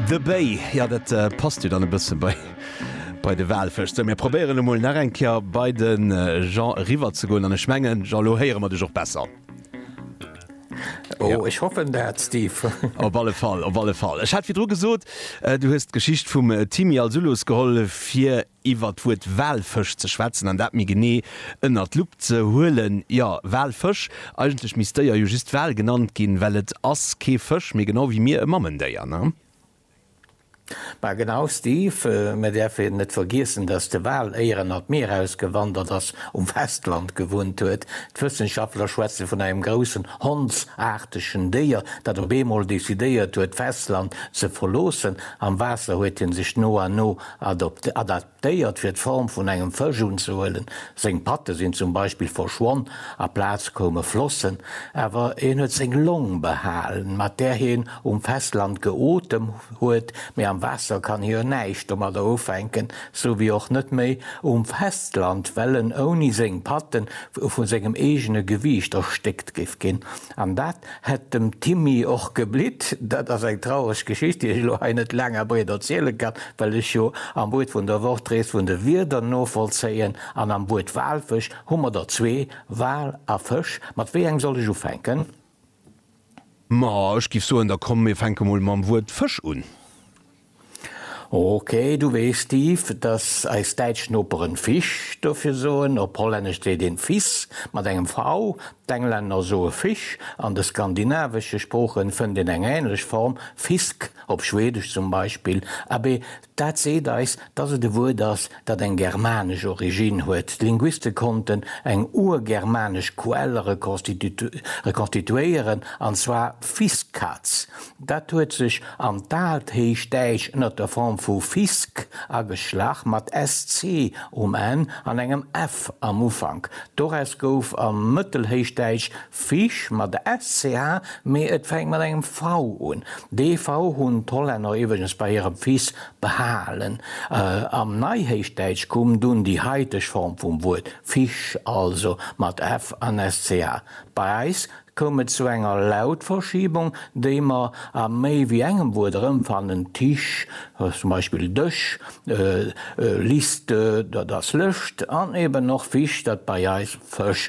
De Béi, jo dat passt jo dann e bësse bei de Walfësch. Sou mir probéieren emol nach eng Kéier bei de Jean eriwwer ze goen an ech mengen, Jean, elo héiere mer dech och besser. Ech hoffen dat, Steve. Op alle Fall, op alle Fall. Ech hat virdru gesot, du hues d'Geschicht vum Timi als Uloos geholl, fir. iwwer d'Wuert Walfësch ze schwätzen an dat méi genee ënnert d'Lupp ze huelen. Jo, Walfësch, eigentlech misst d'Déier jo just Wal genannt ginn, well et ass kee Fësch, mee genau wéi mir e Mammendéier, ne? Ma genau, Steve, mir däerfen net vergiessen, datt de Wal éier en an d'Mier ausgewandert ass, um Festland gewunnt huet. D'Wëssenschaftler schwätze vun engem groussen hondsaartegen Déier, dat op eemol decidéiert huet, d'Festland ze verloossen. Am Waasser huet hie sech no an no Adaptéiert fir d'Form vun engem Fësch unzehuelen, seng Patte sinn zum Beispill verschwonn, a Plaz koume Flossen, awer en huet seng Long behalen, mat där hien um Festland geotem huet, mee am Waasser kann hie jo näischt domadder ufänken, sou wéi och net méi um Festland, well en ouni seng Patte vu sengem eegene Gewiicht erstéckt géif ginn. An dat hätt dem Timmy och geblitt. Dat ass eng traureg Geschicht, déi ech elo hei net laang a breet erziele kann, well ech jo am Wuert vun der Woch d'Rees vun de Wierder novollzéien. An am Wuert Walfësch hu mer der zwee, Wal a Fësch. Mat wéi engem soll ech ufänken? Ma ech géif soen, da komm mir fänke mol mam Wuert Fësch un. Ok, du weess, Steve, dass eis däitsch Noperen Fisch dofir soen. Op Hollännesch seet een Vis mat engem V, d'Englänner soe Fish. An de skandinavesche Sproochen fënnt een eng änlech Form, fisk, op Schwedesch zum Beispill. Abee, dat seet eis, dass et e Wuert ass, dat eng germanesch Originn huet. D'Linguiste konnten eng urgermanesch Quell rekonstituéieren, an zwar Fiskaz. Dat huet sech an d'Aalt Héichdäitsch ënner der Form vu Fisk ageschlach, mat sc um Enn an engem f am Ufank. Doraus gouf am Mëttelhéichdäitsch Fish mat SCH, mee et fänkt mat engem V un. Dee V hunn d'Hollänner iwweregens bei hirem Fils behalen. Am Neihéichdäitsch koum dunn déi haiteg Form vum Wuert Fisch, also mat F an SCH. Bei eis koum et zu enger Lautverschiebung, déi mer a méi wéi engem Wuert erëmfannen, Tisch, zum Beispill Dësch, Liste, dat ass Lëscht, an eben och Fisch, dat bei eis Fësch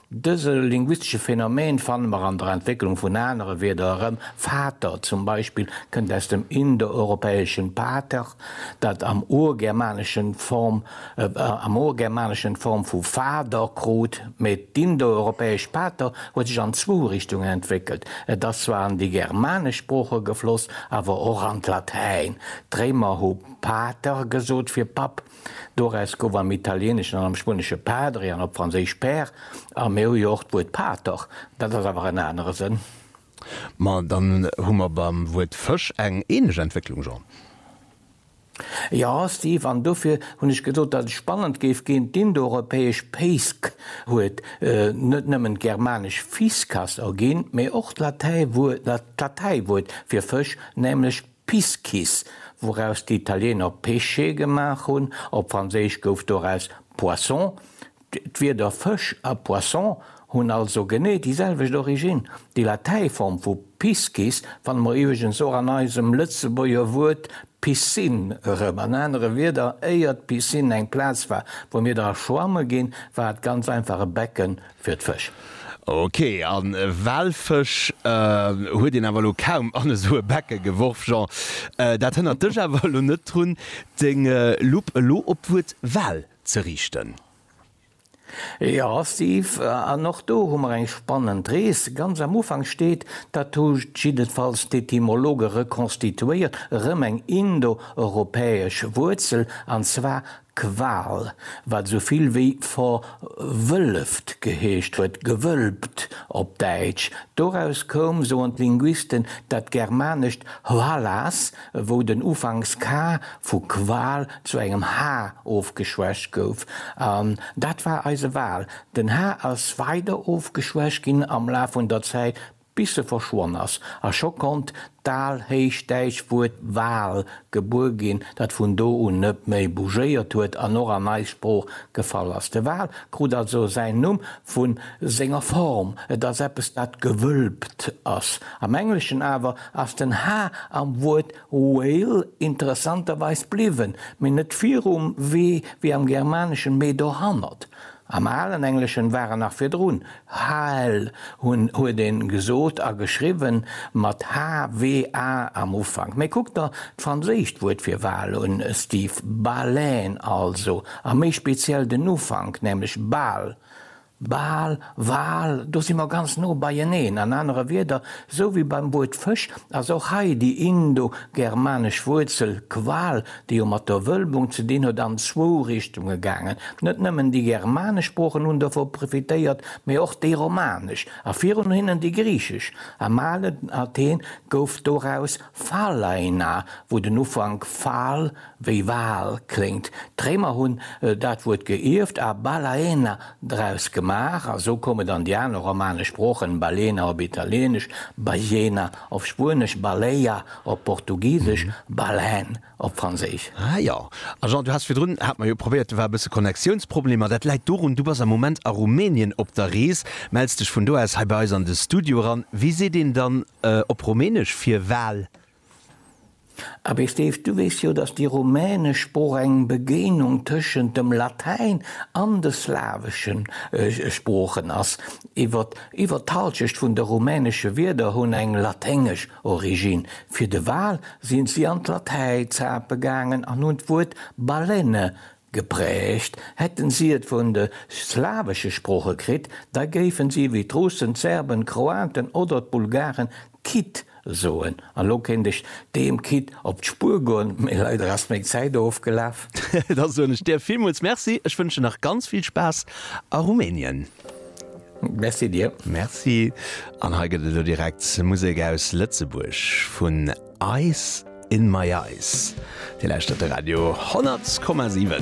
Dëse linguistesche Phänomen fanne mer an der Entwécklung vun anere Wierder erëm, Vater zum Beispill kënnt aus dem indoeuropäeschen pater, dat am Urgermaneschen d'Form am Urgermaneschen d'Form vu Fader krut. Mee d'indoeuropäesch pater huet sech an zwou Richtungen entwéckelt, et ass zwar an déi germanesch Sprooche gefloss, awer och an d'Latäin. D'Réimer hu pater gesot fir Papp. Doraus gouf am Italieneschen an am Spuenesche Padre an op Franséisch Père, a mir hu jo och d'Wuert Pater, dat ass awer en anere Sënn. Ma dann hu mer beim Wuert Fësch eng ähnlech Entwécklung, Jean. Jo, Steve, an dofir hunn ech gesot, datt et spannend géif ginn. D'Indoeuropäesch Péisk huet net nëmmen d'germanesch Fiscas erginn, mee och d'Latäiwuert fir Fësch, nämlech. Piscis, wouraus déi Italieener Pesce gemaach hunn, op Franséisch gouf doraus Poisson. D'Wierder Fësch a Poisson hunn also genee déi selwecht Originn. Déi Latäiform vu Piscis fanne mer iwweregens och an eisem Lëtzebuerger Wuert Piscine erëm. An anere Wierder, éier d'Piscine eng Plaz war, wou mir dra schwamme ginn, war et ganz einfach e Becken, Fir d'Fësch. Ok, a Walfësch huet een awer elo kaum an esou e Becke geworf. Jean, dat hënnert dech awer elo net drun, deng Lupp elo op d'Wuert Wal ze riichten. Jo, Steve, an och do hu mer eng spannend Rees. Ganz am Ufank steet, dat hu jiddefalls d'Etymologe rekonstituéiert, erëm eng indo-europäesch Wuerzel, an zwar Qual, wat esou vill wéi verwëlleft geheescht huet, gewëlbt op Däitsch. Doraus koum, soen d'Linguisten, dat germanescht hvallas, wou den Ufanks ka vu Qual zu engem ha ofgeschwächt gouf. An dat war eise Wal. Den ha ass weider ofgeschwächt ginn am Laf vun der Zäit bis se verschwonn ass, a scho konnt d'alhéichdäitsch Wuert Wal gebuer ginn, dat vun do un net méi bougéiert huet an och an eis Sprooch gefall ass. De Wal krut also säin Numm vu senger Form, et ass eppes dat gewölbt ass. Am Engleschen awer ass den h am Wuert whale interessanterweis bliwwen, mee net virum w wéi am Germaneschen, mee dohannert. Am alen Engleschen war en nach virdrun, Hal huet ee gesot a geschriwwen, mat HWA am Ufank. Mee kuck der d'franséischt Wuert fir Wal un, Steve, Baleine also, a méi speziell den Ufank, nämlech Bal, Bal. Wal, do si mer ganz no beieneen. An anere Wierder, esou wéi beim Wuert Fësch ass och hei déi indo-germanesch Wuerzel qual, déi jo mat der Wölbung ze dinn huet, an zwou Richtunge gaangen. Net nëmmen déi germanesch Sproochen hunn dovu profitéiert, mee och déi romanesch a virun hinnen déi griichesch. Am alen Athen gouf doraus Phalaina, wou den Ufank phal Wéi Wahl kléngt. D'Réimer hunn dat Wuert geierft a balaena draus gemaach, a sou koumen dann déi aner romanesch Sproochen, balena op Italieenesch, ballena op Spuenesch, baleia op Portugisesch, baleine op Franséisch. Ah jo, a Jean, du has virdrun, hat mer jo probéiert, do war e bësse Connectiounsproblemer. Dat läit dorun, du bass am Moment a Rumänien op der Rees, mells dech vun do aus hei bei eis an de Studio eran. Wéi seet een dann op Rumänesch fir Wahl? Abee Steve, du weess jo, datt déi rumänesch Sprooch eng Begéinung tëschent dem Latäin an de slawesche Sproochen ass. Iwwer iwwer d'Halschecht vun de rumänesche Wierder hunn eng laténgesch Originn. Fir de Wal sinn si an d'Latäi zape gaangen an hunn d'Wuert balene Geprägt hätten si et vun de slawesche Sprooche kritt, da géifen si wéi d'Russen, d'Serben, d'Kroaten oder d'Bulgaren Kit soen. An lo kéint ech deem Kit op d'Spur goen, mee leider ass meng Zäit ofgelaf. Da soen ech dir villmools Merci. Ech wënschen nach ganz vill Spaass a Rumänien. Merci dir. Merci. An hei gëtt et elo direkt Musek aus Lëtzebuerg vun. Ice in my eyes. Dir lauschtert de Radio 10,7.